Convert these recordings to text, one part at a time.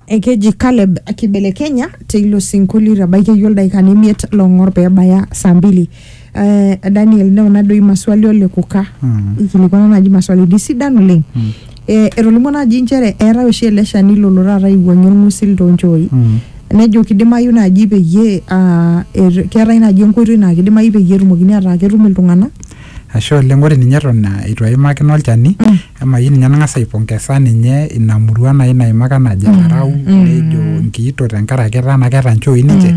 ekeji Caleb kibelekenya teilo sinkolio itabaiki iyie ildaikani imiet long'or pebaya saa mbili eh, Daniel neuna doi maswali ole kuka Mm. ikilikwana naaji maswalini sidan oleng Mm. eh, etolimuo naaji inchere eetae oshi ele shani lolo taata aiwuang'ie orng'usil toonchooi Mm. nejo kidimayu naaji peyie ah, er- keetae naaji enkoitoi naa kidimayu peyie etumokini ataa ketum iltung'anak Ashe oleng ore ninye eton ah, eitu aimakino olchani emayieu ninye nang'as aipongesa ninye ina murua nai naimaka najo enarau nejo nkiito tenkaraki etaa naa keeta nchooi ninche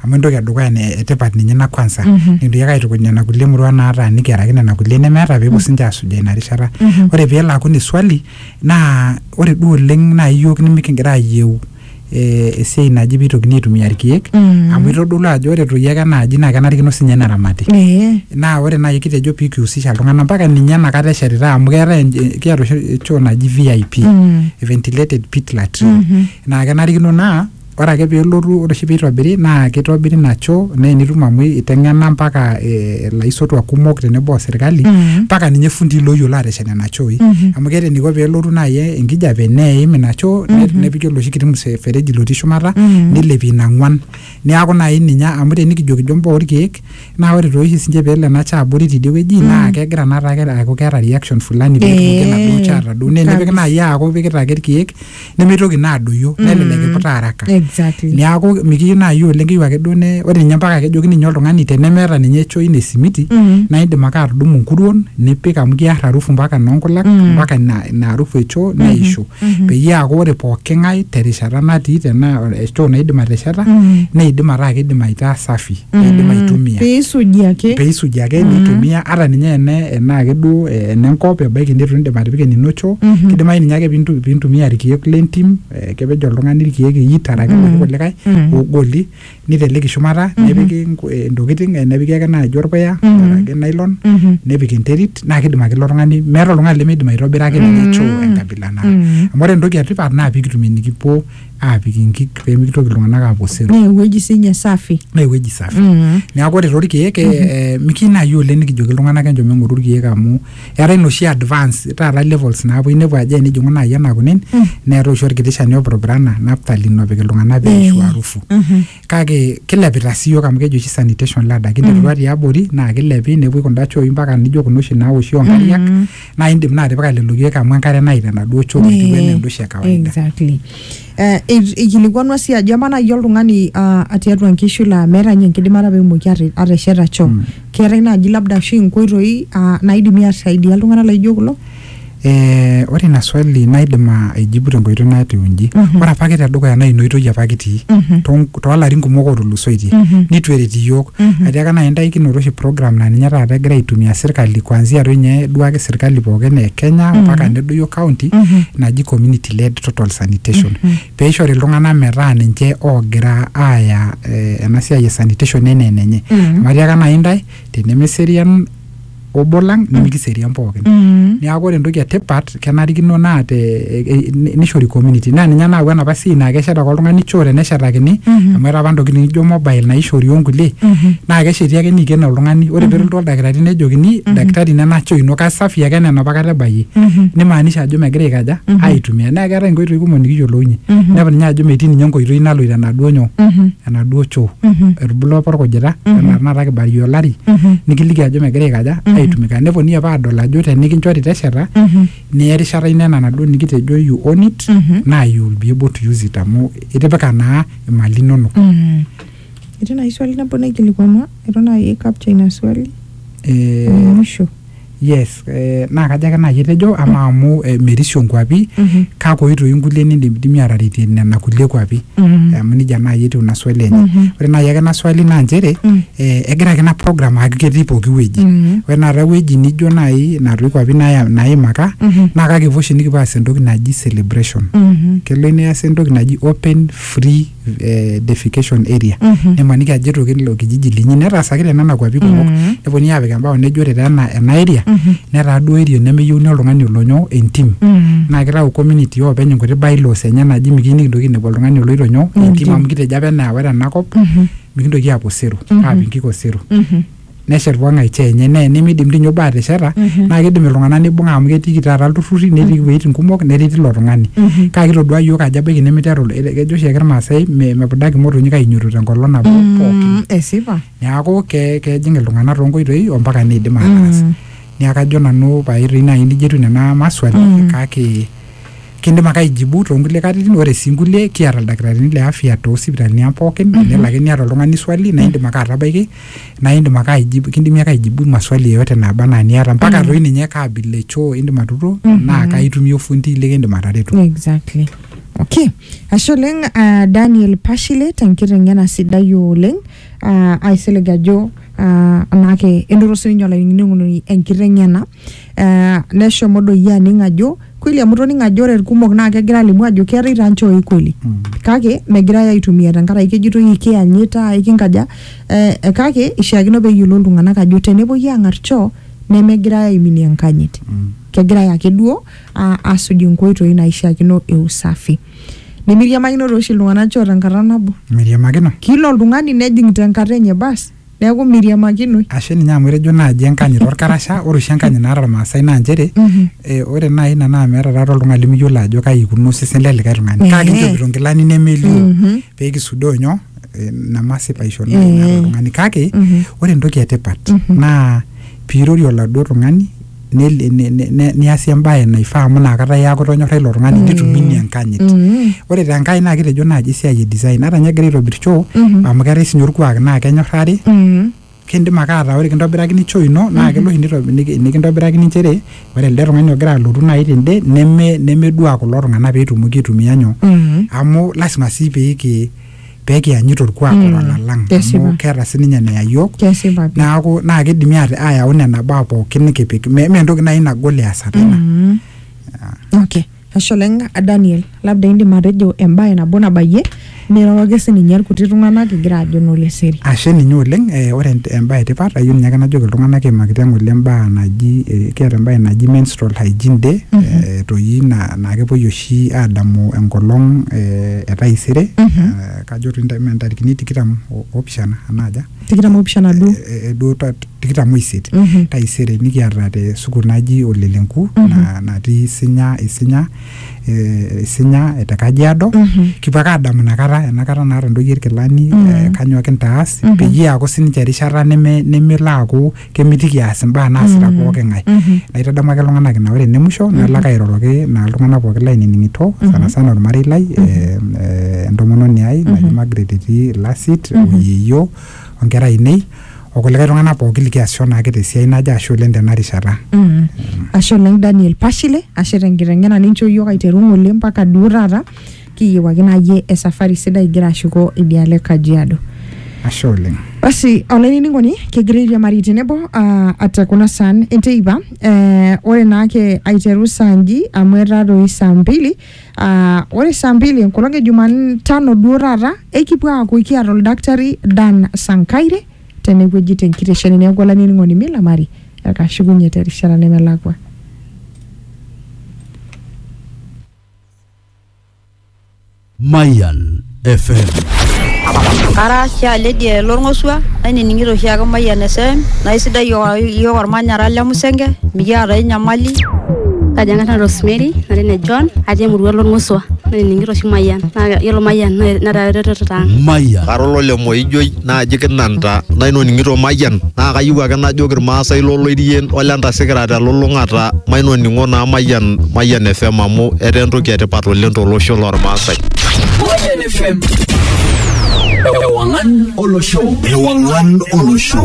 amu entoki edukuya ne- etipat ninye ina kwanza nikintoki ake aitukuj nena kulie murua naataaniki araki nena kulie nemeeta peepuo sinche asujaa ina rishata ore peelo aaku ine swali naa ore duo oleng nai iyiok nimikingira ayieu eh, esiai naji peitokini aitumia irkeek Mm. amu itodolu ajo ore toi ake enaaji naa kenarikino sinye neramati Eh. naa ore naaji kitejo pikiusisha iltung'anak mpaka ninye enakata eshetitae amu keetae enj- kiata oshi choo naji vip Mm. ventilated pit latrine Mhm. naa kenarikino naa ore ake pelotu ore oshi peitobiri naa kitobiri ina choo naa enitum amu iteng'ena mpaka eh, ilaisotuak kumok tenebo o sirkali Mm. mpaka ninye fundii loyiolo ateshet nena chooi Mhm. amu keeta eniko pelotu naaji enkijape neim ina choo ne- Mhm. nepiki oloshi kiti msefereji lotii shumata Mhm. nilepie ina ng'uan neaku naaji ninye amu tenikijo kijo mbaa orkeek naa ore tooshi sinche peelo ena choo abori tidie wueji Mhm. naa kegira naa taake aaku keeta reaction fulani peetumoki enaduo Eh, choo atadou naa enipik kabisa. naaji aaku ipikita ake irkeek nemeitoki naa adoyio nelelek iputa araka exactly niaku mikiyieu naaji oleng keyieu ake duo ne ore ninye mpaka kejoki ninye oltung'ani tenemeeta ninye choo ina esimiti Mhm. naa indim ake atudumu nkuruon nipik amu kiar harufu mpaka noonkulak Mm. mpaka ina ina harufu e choo neishu Mhm. peyie eaku ore pooki ng'ae terishata natii tenaa choo naidim atesheta Mhm. neidim ataa kidim aitaa safi eidim aitumia piisuji ake peisuji ake nitumia ata ninye ene enaa ake duo eh, enenkop ebaiki nitu indim atipika enino choo kidimayu ninye ake pintu- pintumia irkeek lentim eh, kepej oltung'ani irkeek iyit araki iloshi kulikae ogoli niteleki shumata nepiki nku- eh, intokiting eh, nepiki ake naaji orpuya araki nylon nepik enterit naa kidim ake ilo tung'ani meeta oltung'ani lemeidim aitobiraki ninye choo enkabila nara amu ore entoki etipat naa pikitumie enikipuo aapik inkik pee mikitoki iltung'anak aapuo osero naa ewueji sinye safi naa ewueji safi Mm. neeku ore torkeek eh, mikiyieu naaji oleng nikijoki iltung'anak enchom eng'oru irkeek amu eetae inoshi advance taata levels naapuo inepu ajo enijing'u naaji ena kunen neetae oshi orkiti shani opurupurana naphthalene opik iltung'anak pee eishu Eh. harufu Mhm. kake kilepita sii yiok amu keji oshi sanitation ladder kinterua tiabori naa kilepi nepuoi kunda chooi mpaka nijo kuna oshi naoshi onkariak Mm. naa indim naa atipika lelo keek amu enkare naita enaduo choo etiu enaa enda oshi e kawaida exactly Eh, ei- eikilikwanua sii ajo amaa naaji oltung'ani ah, tiatua nkishu laa meeta ninye enkidimata peemoki ate- atesheta choo Mm. keetae naaji labda ashu inkoitoi ah, naidimi aisaidia iltung'anak laijo kulo Eh, ore ina swali naidim a- aijibu tenkoitoi natiu inji Mhm. ore apake tedukuya naa inoitoi apa kitii Mhm. toon- toolarin kumok otulusoitie Mhm. nitu eret iyiok Mhm. atiaka nai intae kinoto oshi program naa ninye taata egira aitumia sirkali kuanzia toi ninye duake sirkali pookin e kenya Mhm. mpaka nedoyio county Mhm. naji community led total sanitation Mhm. peishori iltung'anak metaa ninche oogira aaya eh, ena siai e sanitation enaa enenye Mhm. amu atiaka nai intae tenemeserian obo lang nimikiserian pookin Mm. niaku ore entoki etipat kenarikino naa te e- e- ni- nishori community naa ninye nayau enapa siai naa keshet ake oltung'ani choo teneshetakini Mhm. amu etaa apa intokitin nijo mobile naishori onkulie Mhm. naa kesheti ake niiken oltung'ani ore pelotu oldakitari nejokini daktari nena choo ino kasafi ake enaa enapa kata ebayie Mhm. nimaanisha ajo megira aikaja Mhm. aitumia naa keetae inkoitoi kumok nikiyiolounye Mhm. nepu ninye ajo metii ninye enkoitoi naloito enaduo nyoo Mhm. enaduo choo mm-hmm. etubulua apa orkujita mm-hmm. enaa tenakata kibarie olari mm-hmm. nikiliki ajo megira aikaja aitumika neponunui apa adol ajo tenikinchori tesheta niya erishata ino ena naduo nikitejo you own it naa you will be able to use it amu itipika naa imali inonok etii naaji swali nabo naikilikuama eton naaji capture ina swali eh, mwisho Yes, eh, naa kajo ake naaji etejo ama amu eh, merisio nkuapi Mhm. kake oitoi nkulie nindimidimi aataretie nena kulie kuapi Mhm. amu nijia naaji etiu ina swali enye Mhm. ore naaji ake ina swali naa nchere Mm. eh, egira ake ina program aaku ketii pooki wueji Mhm. ore naata ewueji nijo naaji natoi kuapi naaya- naimaka Mhm. naa kake kipuo oshi nikipuo aas entoki naji celebration Mhm. kelo neasi entoki naji open free eh, defecation area nimaniki ajo etoki ilo kijiji linyi netaasaki te nena kuapi kumok neponunui aapik embao nejo ore taa ena ena area netaa duo area nemeyieuni oltung'ani olonyo entim naa kitau community oopeny inkuti bylaws enye naaji mikiyieu nikintoki ainepu oltung'ani oloito nyoo entim amu kitejo apa enaa ore enakop mikintoki aapuo osero aapik inkik osero neshet pooki ng'ae choo enye naa enimidim dii ninye obo atesheta naa kidim iltung'anak nibung'a amu ketiiki taata ilturrurri netii iwueitin kumok nereti ilo tung'ani kake kitoduaa iyiook ajo ebaiki nemiteru il- kejo oshiake irmaasai me- mepudaki imotonyik ainyototo tenkolong nabo pookin esipa neaku ke kejing iltung'anak tonkoitoi ompaka neidim ataas niaku kajo nanu pae toi naaji nijia etiu nena maswali kake kindim ake aijibu tonkulie katitin ore sii inkulie kiata ildakitarini le afya tosipitalini ang pookin enelo ake niata oltung'ani swali naindim ake atabaiki naa indim ake aijibu kindimi ake aijibu maswali yeyote naaba anaa niata mpaka Mm. toi ninye kaa abila e choo indim atuturo Mhm. naa kaitumia ofundi likindim atareto exactly okay ashe oleng uh, daniel pashile tenkiteng'ena sidai oleng uh, aisilig ajo uh, anaake enoto sininye olainining'oni enkiteng'ena eh, neshomo doi aning ajo kweli amu toning ajo ore irkumok naa kegira alimu ajo keetae taa nchooi kweli kake megirae aitumia tenkaraki kejitoi ikiyanyita ikinkaja eh, eh, kake ishiakino peyiolou iltung'anak ajo tenepuoi ang'ar choo nemegirae aiminie enkanyit kegirae ake duo a- asuj inkoitoi naishiakino e usafi nimiriamakino tooshi iltung'anak choo tenkata nabo miriamakino kila oltung'ani nejing tenkata enye bas Neaku meiriamakinoi. Ashe ninye amu etejo naaji enkanyit olkarasha, ore oshi enkanyit naata Ilmaasai naa nchere ore naaji ina naa meeta taata oltung'ani limiyiolo ajo kaji eikununo osesen le likae tung'ani kake inchopito inkilani nemelioo pee kisudoo nyoo ina masipaisho naata oltung'ani. Kake ore entoki e tipat naa pee irorie oladuo tung'ani nel- ne- ne- ne- niasie embae naifaa amu inakata eaku itonyorra ilo tung'ani nitumunyie enkanyit ore tenkai naa kitejo naaji esiai e design ata ninye egira aitobir choo amu keetae sinye orkuak naa kenyorrari kindim ake ataa ore kintobirakini choo ino naa kelo oshi nito- niki- nikintobirakini nchere ore elde tung'ani ogira alotu naaji tende neme nemedua kulo tung'anak petumoki aitumia nyoo amu lasima sii piki pee kiyanyit orkuak Mm, otala lang kesipa. amu keeta sininye neya yiok kesipa pi neaku naa kidimi ate- ayau nena baa pookin nikipik me me entoki naaji nagol easata ina Mm. okay ashe oleng daniel labda indim atejo embae nabo nabayie niroroki sininye irkuti tung'anak igira ajo noleseri ashe ninye oleng eh, ore ent- embae etipat ayieu ninye ake najoki iltung'anak imakita ng'ole mbaa naji eh, kiata embae naji menstrual hygiene day Mhm. eh, toi na- naa kepuoi oshi oshi aadamu enkolong e taisere kajo ntarikini tikitam oopishana enaaja tikitam oopishana duo duo tikitam oisiet taisere nikiata te sukuul naji ole lenku natii isinya isinya isinya te kajiado kipuo ake aadamu inakata enakata naata intoyie irkilani kanyoo kintaas peyie eeku sininche erishata nemelo aaku kemitiki eas imbaa naasita mm-hmm. pooki ng'ae mm-hmm. naitadamu ake iltung'anak ina ore ene musho mm-hmm. nalo ake airoroki naa iltung'anak pooki lainining'ito sana sana ormarei lai eh, eh, entomononi ai naji Margaret etii Lasit oyieyio onkera ainei okulikae tung'anak pooki likiasisho naake tesiai naje ashu oleng tena rishata mm. ashe oleng Daniel Pashile ashe tenkiteng'ena ninchoo iyiook aiteru ng'ole mpaka duo taata kiyieu ake naaji esafari sidai igira ashuko idialo e Kajiado. ashe oleng Basi olainining'oni kegira airiamari tenebo uh, ate kuna saan enteipa eh, ore naake aiteru saa nji amu etaa doi saa mbili uh, ore saa mbili enkolong e Jumatano duo taata ekipuo aaku kiata oldakitari Dan Sankaire tenewueji tenkitesheni neeku olainining'oni milamari ekashukunye terishata nemelakua. Mayan FM. Ara sialedi lorng'osua nainining'ito oshiake Mayian FM naa isidai iyiook ormanyara le Musenge mikiata ai nyamali. Kaji ang'as Rosemary nara ene John atii emurua lorng'osua nainining'ito oshi Mayian naa yiolo Mayian netaa eretoto ang'. Mayan. Kara olole Moijoi naaji kinanta naitoning'ito mayian naa kayieu ake najoki irmaasai loloirien ole ntasikira telulung'ata mainoning'o naa mayian mayian fm amu etaa entoki etipat oleng tolosho lormaasai Mayian FM. Ewangan olosho. Ewangan olosho.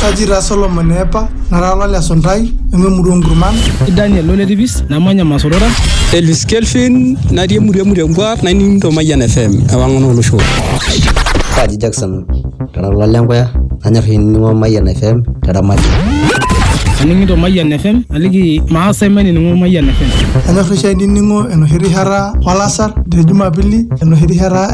Kaji taa Solomon eepa, nara olale esuntai, nanu emurua oo nkurman. Daniel ole tipis namanya Masorora. Elvis Kelvin natii emurua e Murengwa naining'ito Mayian FM ewang'an olosho. Kaji Jackson kara olale Enkoya nanyor ainining'o Mayian FM te Ramati. Aning'ito Mayian FM aliki maasai mainining'o Mayian FM. Anyor oshi ainining'o enoshi rishata olasar te Jumapili enoshi rishata